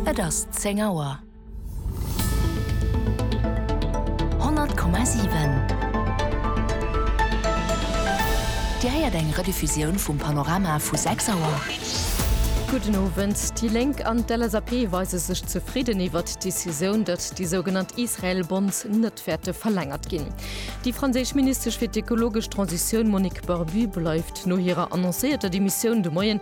Et ass 10 Auer. 100,7 Dir héiert eng Rediffusioun vum Panorama vu 6 Auer. Gudden Owend. Déi Lénk an d'LSAP weise sech zefridden iwwert d'Decisioun, datt déi sougenannt Israel Bonds net wäerte verlängert ginn. Déi franséisch Ministesch fir d'ekologesch Transitioun Monique Barbu bleift no hirer annoncéierter Demissioun de Moien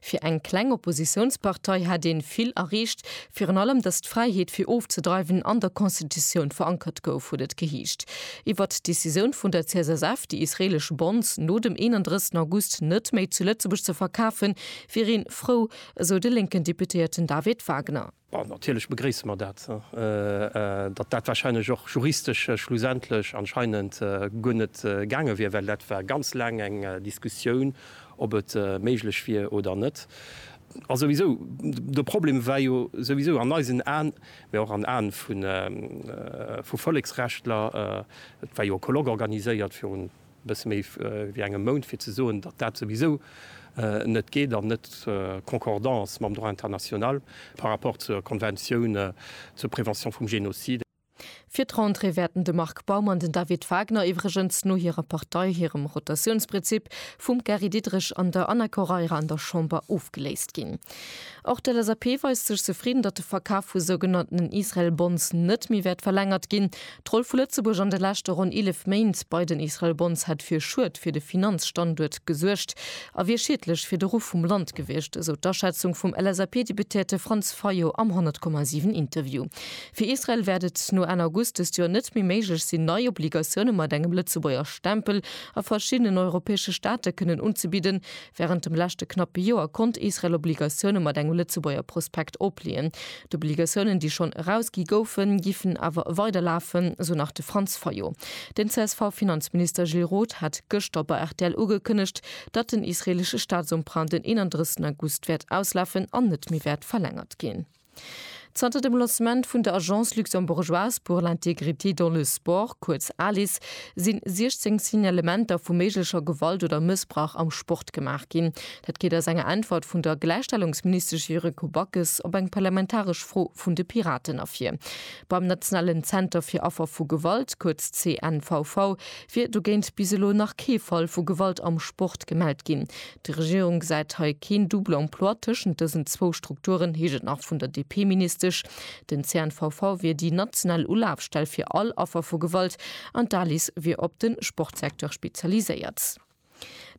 Fir eng kleng Oppositiounspartei hätt een vill erreecht, virun allem datt d'Fräiheet fir ofzedreiwen an der Constitutioun verankert gouf, huet et geheescht. Iwwert d'Decisioun vun der CSSF, déi israelesch Bonds no dem 31 August net méi zu Lëtzebuerg ze verkafen, wier een frou, esou de lénken Deputéierten David Wagner. Bon, natierlech begréisse mer dat, datt dat wahrscheinlech och juristesch schlussendlech anscheinend guer net gaange wier, well dat war ganz laang eng Diskussioun, ob et méiglech wier oder net. A souwisou, de Problem war jo souwisou an eisen Aen, mä och an Aen vu Volleksrechtler, et war jo e Colloque organiséiert virun E bësse méi wéi engem Mount fir ze soen, datt dat souwisou net geet an net concordant ass mam Droit international par rapport zur Konventioun zur Prévention vum Génocide. Fir d'Rentrée wäerten de Marc Baum an den David Wagner iwwregens no hirer Partei hirem Rotatiounsprinzip vum Gary Diderich an der Anna Correira an der Chamber ofgeléist ginn. Och d'LSAP weist sech zefridden, datt de Verkaf vu sougenannten Israel Bonds net méi wäert verlängert ginn. D'Roll vu Lëtzebuerg an de leschte ronn 11 Méint bei den Israel Bonds hätt fir Schued fir de Finanzstanduert gesuergt a wier schiedlech fir de Ruff vum Land gewiescht, esou d'Aschätzung vum LSAP-Deputéierte Franz Fayot am 100,7 Interview. Fir Israel wäert et no Enn August dëst Joer net méi méiglech sinn, nei Obligatioune mat engem Lëtzebuerger Stempel a verschiddenen europäesche Staate kënnen unzebidden, Wärend dem leschte knappe Joer konnt Israel Obligatioune mat engem Lëtzebuerger Prospekt opleeën. D'Obligatiounen, déi schonn erausgi goufen, giffen awer weider lafen, esou nach de Franz Fayot. Den CSV-Finanzminister Gilles Roth hat gëschter bei rtl ugekënnegt, datt den israeelesche Staatsemprunt den 31 August wäert auslafen an net méi wäert verlängert ginn. Zanter dem Lancement vun der Agence luxembourgeoise pour l'intégrité dans le sport, kuerz ALIS, si 16 Signalementer vu méiglecher Gewalt oder Mëssbrauch am Sport gemaach ginn. Dat geet aus enger Äntwert vun der Gläichstellungsministesch Yuriko Backes op eng parlamentaresch Fro vun de Piraten ervir. Beim nationalen Zenter fir Affer vu Gewalt, kuerz CNVV, wier dogéint bis elo nach kee Fall vu Gewalt am Sport gemellt ginn. Déi Regierung gesäit hei keen double emploi tëschent dësen zwou Strukturen, heescht et nach vun der DP-Ministesch. Den CNVV wier déi national Ulafstell fir all Affer vu Gewalt an d'Alice wier op de Sportsecteur spezialiséiert.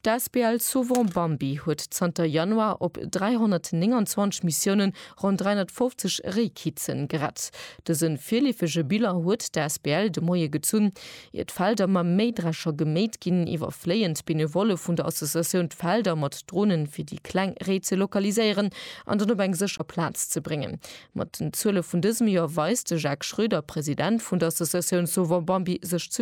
D'Asbl Sauvons Bambi huet zanter Januar op 329 Missiounen ronn 350 Réikizen gerett. Dëse virleefege Bilan huet d'Asbl de Moie gezunn. Ier d'Felder mam Méidrescher geméit ginn, iwwerfléien d'Benevolle vun der Associatioun d'Felder mat Dronen, fir déi kleng Réi ze lokaliséieren an dann op eng sécher Plaz ze bréngen. Mat den Zuele vun dësem Joer weist de Jacques Schroeder, President vun der Associatioun Sauvons Bambi sech